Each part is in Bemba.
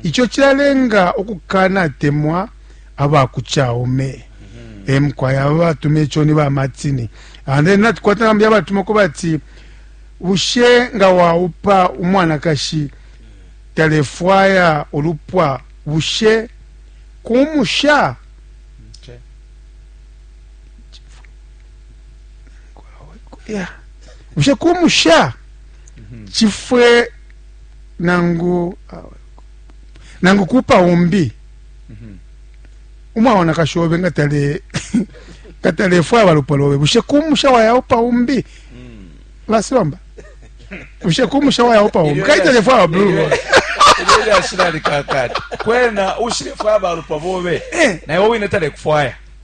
Ico cilalenga ukukanatemwa aba ku Chaume. Mm-hmm. E mukwai aba batuma ico ni ba Martini. And then natukwata nambi abatuma kuba ati bushe nga waupa umwanakashi talefwaya ulupwa bushe kumusha bushe kumusha chifwe nangu nangu kupa umbi umwaona kashobe nga tale nga talefwaya balupwa lobe bushe kumusha wayaupa umbi basibamba bushe kumusha wayaupa umbi kai talefwaya babulu ilyo ashirari kakati kwena ushirefwaya balupwa bobe eh. naye wowine talekufwaya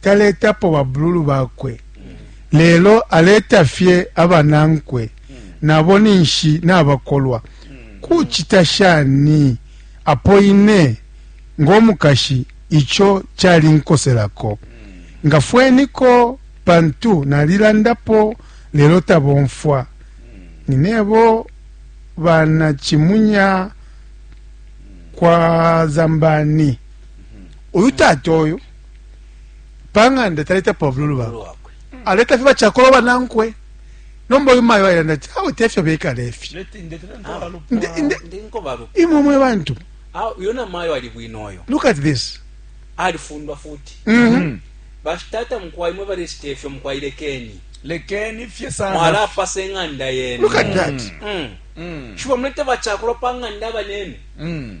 taletapo babululu bakwe, lelo aleta fye abanankwe, na bo ninshi nabakolwa. Kucita shani apo ine ngo mukashi ico calinkoselako? Ngafweniko, pantu nalilandapo lelo tabomfwa. Ninebo bana Chimunya kwa Zambani. Uyu tata uyu. pa ng'anda taleta pabululu bakwe aleta fye bacakolo banankwe nomba uyu mayo ayilanda ati awe tefyo bekala efyo imwe mwe bantu uyo namayo ali bwino oyo look at this alifundwa futi mm -hmm. bashitata mukwai mwe balesita efyo mukwai lekeni lekeni fye sana mwalapasa eng'anda yenu look at that mm. Mm. mm. shiba mulete bacakulo pa ng'anda abanenu mm.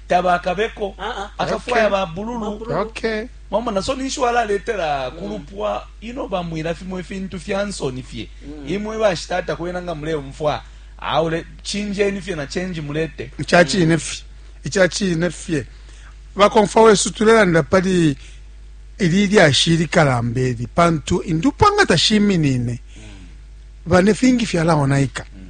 tabakabeko akafwaya okay. babululu okay. mwamona so ninshi walaletela kulupwa ino bamwila fimo ifintu fya nsoni fye mm. imwe bashitata kwena nga muleumfwa aule chinjeni fye na change mulete ichachine fye ichachine fye bakomfa wesu tulelanda pali ili lyashi likalamba eli pantu indupwa nga tashiminine mm. bane fingi fyalaonaika mm.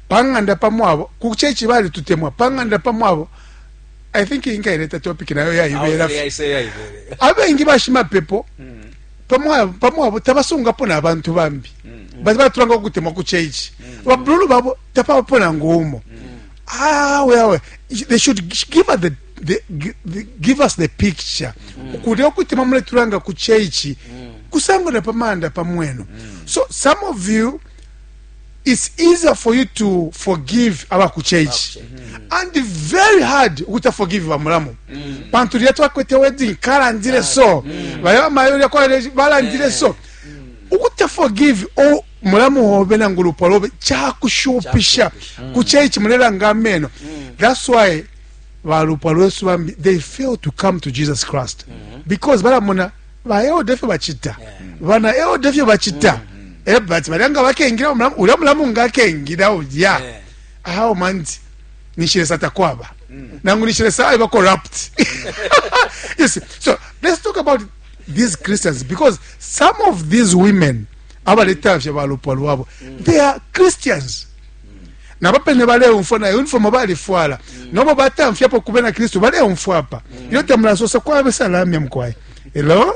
pa ng'anda pa mwabo ku chechi balitutemwa pa ng'anda pa mwabo i think inkaileta topic nayo yaibela abengi bashimapepo mm. pa mwabo tabasungapo n'abantu bambi mm. bati batulanga okutemwa ku chechi mm. babululu babo tapabapo nangu umo awe ah, awe they should give us the The, the, give us the picture mm. ukuti okutima muletulanga ku cheichi mm. kusangana pamanda pamwenu mm. so some of you It's easier for you to forgive aba ku church and very hard ukuta forgive ba mulamu pantu lya twakwete wedding kalandile so baya bamayo lya kwa balandile so ukuta forgive o mulamu hobe nangu lupwa lobe chakushupisha ku church mulelanga ameno that's why balupwa lwesu bambi they fail to come to jesus christ because balamona baeoda efyo bacita bana eoda efyo bacita mm-hmm. ebati eh, balya nga bakengila ulya mulamu nga akengila ulya awo manti nishilesa takwaba mm. nangu nishilesa ayo bacorrupt you see so let's talk about these christians because some of these women abaleta fye balupwa lwabo mm. they are christians nabo pene baleumfwa na uniform balifwala nobo batamfyapo kubena kristu baleumfwa apa iyo tamulasosa kwabe salamya mukwai hello